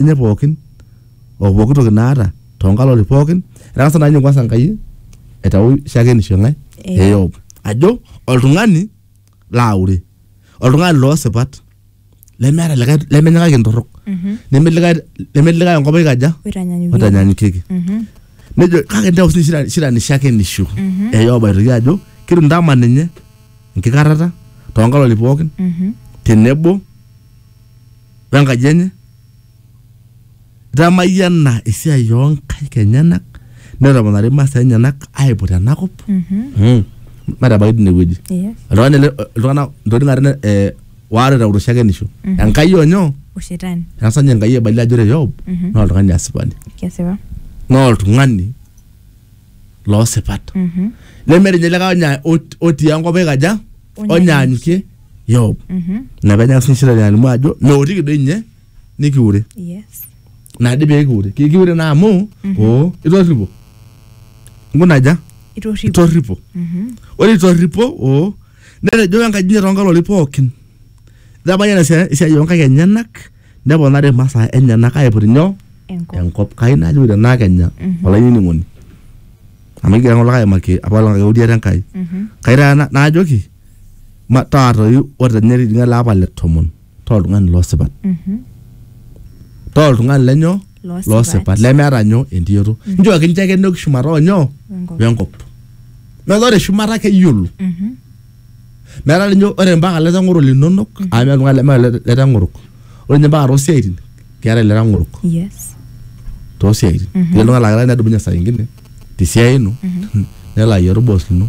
enye pookin o pooki toki naata too nkalori pookin etang'asa naa ninye kwanza Enkai aitau shakenisho ng'ae Eh. e Yob ajo oltung'ani laaure oltung'ani loo sipat lemeeta likae lemenyikaki entorrok Mhm. nemelikae nemelikae enkop aikaja Oitanyanyukie. otanyanyukieki Mhm. nejo kake intau sii shira- shira ni shakenisho Mhm. e Yob aitoki ajo kitu ntama ninye enkikarrata too nkalori pookin Mhm. tenebo we nkaji enye itamayiana esiai oo nkaik enyenak netoponari imasaa enyenak aiput ena kop Mm. metabaiki tine wueji Yes. oltung'ani ele iltung'anak intokitin are ne- eh, waare teurusho shakenisho enkai onyoo Ushetani. etasa ninye enkai ebalie ajo ore yob naa oltung'ani asipani Kesipa. naa oltung'ani loo sipat nemeeta ninye likae onya- ot- otii enkop oikaja onyaanyukie Yob ina peenyaka sininye shetani alimu ajo meotiki doi ninye nikiure yes nadi pee kiure Ki- kiure naa amu oo itorripo nkunaja itorripo itorripo ore itorripo oo netejo enkaji inyi toonkaloli pookin ijo abayie ena siai esiai oonkaik enyenak neponari imasaa enyenak aiput inyoo Enkop. enkop kai najo tenaa kenya Mhm. olainining'oni amu egira ng'ole aimaki apa olapa euriata enkai Mhm. kai taata na- naajoki ma- taatoyu ore tenya etijing'a ele apa le tomon taa oltung'ani losipat Mhm. taa oltung'ani lenyoo Losipat. losipat lemeeta nyoo entiyoto nchooki nche ake entoki shumata onyoo Wenkop. wenkop metaa ore shumata keyiolo Mhm. metaa ninye ore mpaka letang'oro linonok amu meeta oltung'ani lemeeta le- letang'orok ore ninye mpaka tosiaitin keetae letang'orok yes tosiaitin mm -hmm. oltung'ani laa nedumunye saa ingine tesiai ino mm -hmm. nelo ayiaru boss lino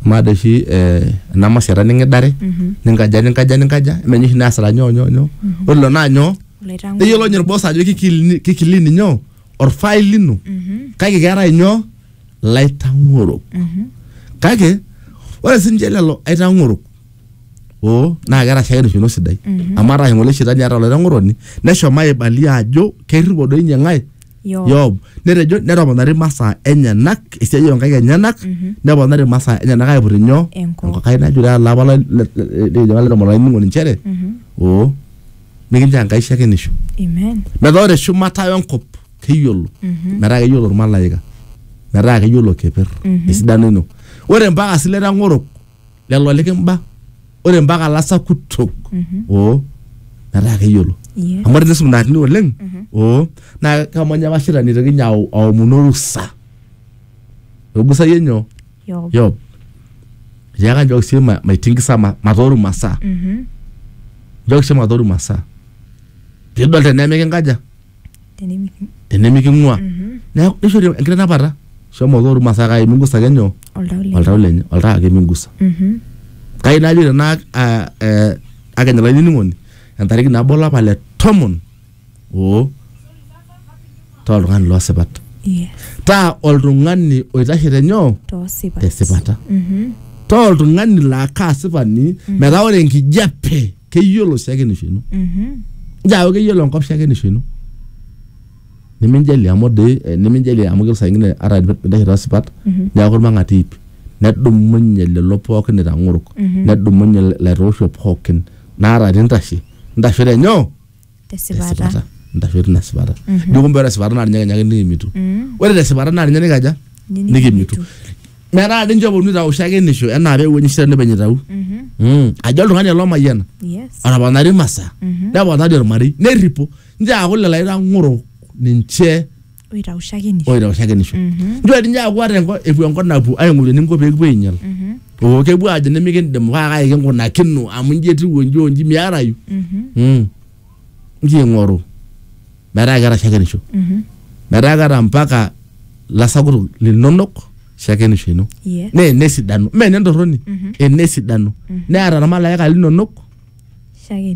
maada oshi eh, ena masiata ning'idare mm -hmm. ninkaja ninkaja ninkaja emenye oshi neasita nyoo nyoo nyoo mm -hmm. ore lelo naa nyoo Oloitang'oro. neyiolo ninye orboss ajo kikilini kikilini nyoo orfail lino mm -hmm. kake keetae nyoo laitang'orok kake ore sininche lelo aitang'orok oo naa keeta shaake erishata sidai amu ataa ng'ole shetani ataa olaitang'oroni neshomo aibalia ajo kerripo doi ninye ng'ae Yob. Yob netejo netoponari masaa enyenak esiai onkaik enyenak neponari masaa enyenak aiput inyoo Enkop. Enkai najure alapa lai- le- le- le- le- laitomon olainining'oni inchere oo mikinchoo Enkai shakenisho Amen. metaa ore shumata wenkop keyiolo mm-hmm. metaa keyiolo irmalaika metaa keyiolo keper mm-hmm. esidano ino ore mpaka sileta ng'orok lelo likimba ore mpaka lasakutok mm-hmm. oo metaa keyiolo amu ore nisum naatini oleng oo naa kamanya apa shida nitoki ninye aomonu orusa ogusayie nyoo yob tiaka nchooki sii maitingisa matooru masaa nchooki sii matooru masaa piidol tenemikinkaja tenemiking'ua neeku nishori enkitanapata shomo ake ormaasai kake mingusa ake nyoo oltau lenye oltau lenye oltau ake mingusa Mhm. kai najo tena ah, eh, akenya olainining'oni entariki nabo olapa le tomon oo toltung'ani loosipat Yes. taa oltung'ani oitashe tenyoo toosipat tesipata Mhm. taa oltung'ani laa kaasipani metaa ore enkijape keyiolo shakenisho ino Mhm. njaaku keyiolo enkop shakenisho ino niminjalie amu doi eh, niminjalie amu keyiolo saa ingine ata pintashe tosipat neeku irmang'ati iip nedumunye lelo pookin itang'orok nedumunye ilaitoosho pookin naa ata tintashe intasho tenyoo tesipata ntasho tina sipata jo kumbe ore esipata naa ninye kenya ake nikimitu ore tesipata naa ninye nikaja nikimitu metaa dii ninche oponu aitau shakenisho enaa peewuo ninye shetani openy aitau Mm. ajo oltung'ani ele omayiana yes atoponari imasaa neponari ormarei nerripo ninche aaku lelo aitang'oro ninche oitau shakenisho oitau shakenisho nchoo dii ninye aaku ata enko- epuo enkop napuo aing'oru eninko pee kipuo ainyal oo kepuo aajo nimikindim kake kaai kinkunakino amu inji etiu onji onji miarayu Mm. nchoo ing'oru metaa keeta shakenisho metaa keeta mpaka lasakutuk linonok shakenisho ino Yes. naa enesidano mee enetorroni enesidano neeta irmalaika linonok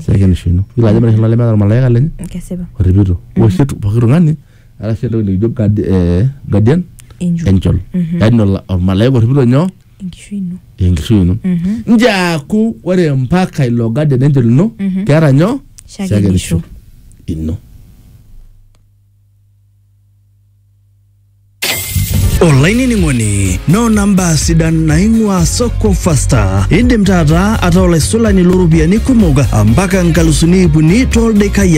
shakenisho ino ilo ajo meeta olemeeta ormalaika lenye kesipa orripito oshi etu pooki tung'ani eeta sii entoki nikijo guard- eh, guardian Angel. angel Mhm. yaani ola- ormalaika orripito nyoo enkishui ino enkishui ino Mhm. njaaku ore mpaka ilo guardian angel ino Mhm. keeta nyoo shakenisho ino olainining'oni noona mbaa sidan naing'ua soko fasta indim taata ataa olaisulani looropiyiani kumok mpaka nkalusuni ip uni tooldaikai ake